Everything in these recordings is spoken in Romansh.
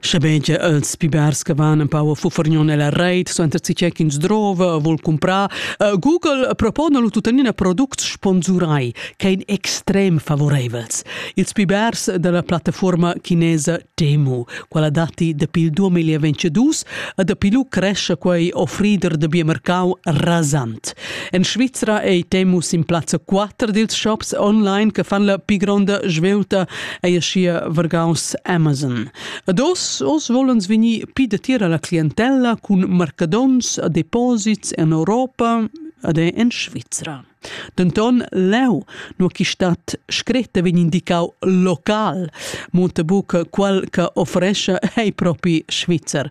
Schebein che els pi bers che van un pau a fufargnon nella reit, so enter che ins drova, vol comprar, uh, Google propona lu tuttenina products sponsurai, che ein extrem favoreivels. Ils pi bers della plattaforma cinesa Temu, quella datti dapi il 2022 e dapi lu cresce quei offrider de biomercau rasant. En Svizra ei Temus in plazza 4 dils shops online che fan la pi gronda svelta, ei aschia vargaus Amazon. Ad os, os volens vegnir pi datier alla clientella cun marcadons a deposits en Europa ad è en Svizra. Denton leu, no chi stat scretta vegn indicau local, monta buca quel che offrescia ei propi Svizzer.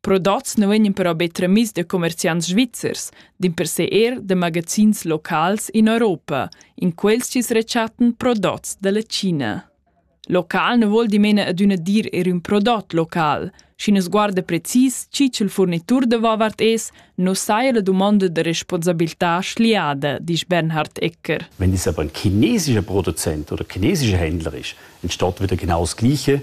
Prodots nu vegnan però be tramiss da commerciants svizzers, dimpersè eir da magazins locals in Europa, in quels chi's rechattan prodots da la China. Local ne vuol dimena adüna dir er ün prodot local. Schi nu sguarda precis chi ch'el furnitur da vovart es, nu saja la dumonda da responsabilità schliada, disch Bernhard Ecker. Wenn das aber ein chinesischer Produzent oder chinesischer Händler ist, entsteht wieder genau das Gleiche,